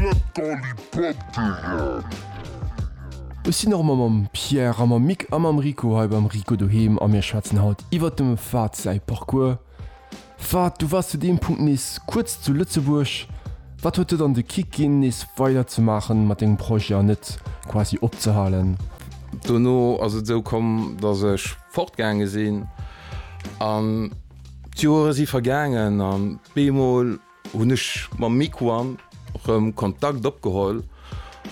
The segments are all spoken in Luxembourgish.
Bett Gallipotteren! Ech sinn erëm mam Pierre a mam Mick a mam Rico hei beim Rico Doheem a mir schwätzen haut iwwert dem Fahd säi Parcours. Fahd, du waars zu deem Punkt nees kuerz zu Lëtzebuerg. Wat huet dir dann de Kick ginn, nees weider ze maachen mat dengem Projet an net quasi opzehalen? Dono ass et esou komm, dass ech fortgaange sinn an d'Joere si vergaangen an bémol, Hunn ech mam Miquan rëm Kontakt opgeholl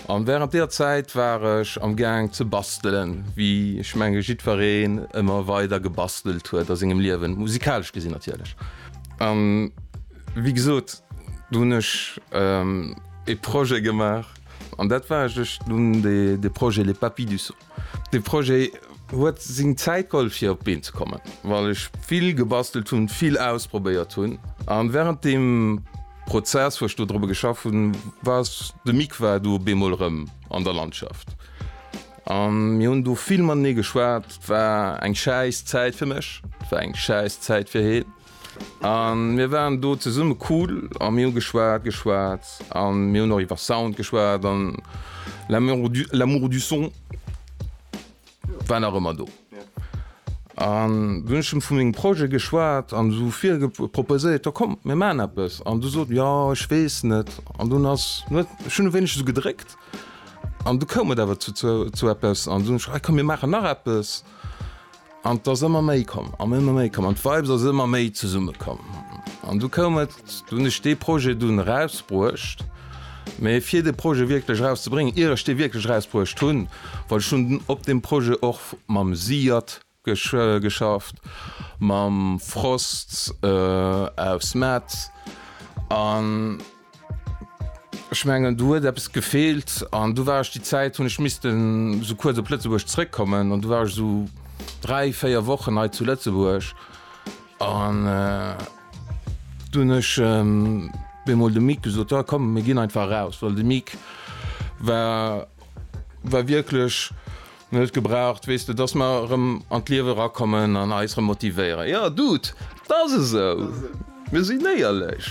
an während deer Zäit war ech am Gaang ze bastelen, wéi ech menge jiddwereen ëmmer weider gebastelt huet a sengem Liewen, musikalesch gesinn natierlech. An wéi gesot, do hunn ech ee Projet gemaach an dat war, ech hunn dee Projet Les Papy du Son. De Projet huet seng Zäit geholl fir op d'Been ze kommen, well ech vill gebastelt hunn, vill ausprobéiert hunn. A wärend deem Prozess, wou ech do drop geschafft hunn, war s de Mick war do op eemol erëm an der Landschaft. A mir hunn do vill matenee geschwat. Et war eng schäiss Zäit fir mech, et war eng schäiss Zäit fir hien. A mir waren do zesumme cool a mir hu geschwat, geschwat a mir hunn och iwwer Sound geschwat an l'amour du son war nach ëmmer do. An du hunn ech em vu mengem Projet geschwat an esou proposéiert, jo komm mir maachen eppes an du sot jo ech weess net an dunn ass net, ech hunn e wéineg esou gedréckt an du koum et awer zu eppes an dunn ech, ah komm mir maachen nach eppes. An et ass ëmmer méi komm an ëmmer méi komm an d'Vibes ass ëmmer méi zesumme komm. An du koum et, du hunn ech dee Projet dunn erausbruecht. Mee fir de Projet wierklech erauszebréngen, ier ech dee wierklech erausbruecht hunn, well ech hunn op deem Projet och mam Siad geschafft, mam Frost aus Metz an. Ech mengen do huet eppes gefeelt an du war ech déi Zäit hunn ech missten sou kuerz op Lëtzebuerg zréckkommen an du war ech sou 3, 4 Wochen hei zu Lëtzebuerg an du hunn ech bemol dem Mike gesot, jo komm mir ginn einfach eraus, well de Mike war war wierklech Mir huet gebraucht, weess de, dass mer erëm an d'Liewe erakommen an eis erëm motivéieren. Jo, Dude, et ass esou, mir sinn éierlech.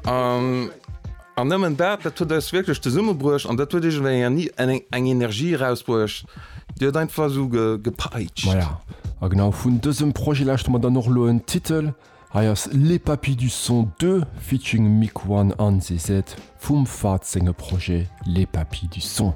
An nëmmen dat, dat huet eis wierklech zesummebruecht an dat huet iergendwéi eng Energie erausbruecht, déi huet einfach esou gepeitscht. Maja, a genau vun dësem Projet lauschte mer dann och elo en Titel. Hei ass Les Papis du Son Deux featuring Mick One an Zezet vum Fahd senge Projet Les Papis du Son.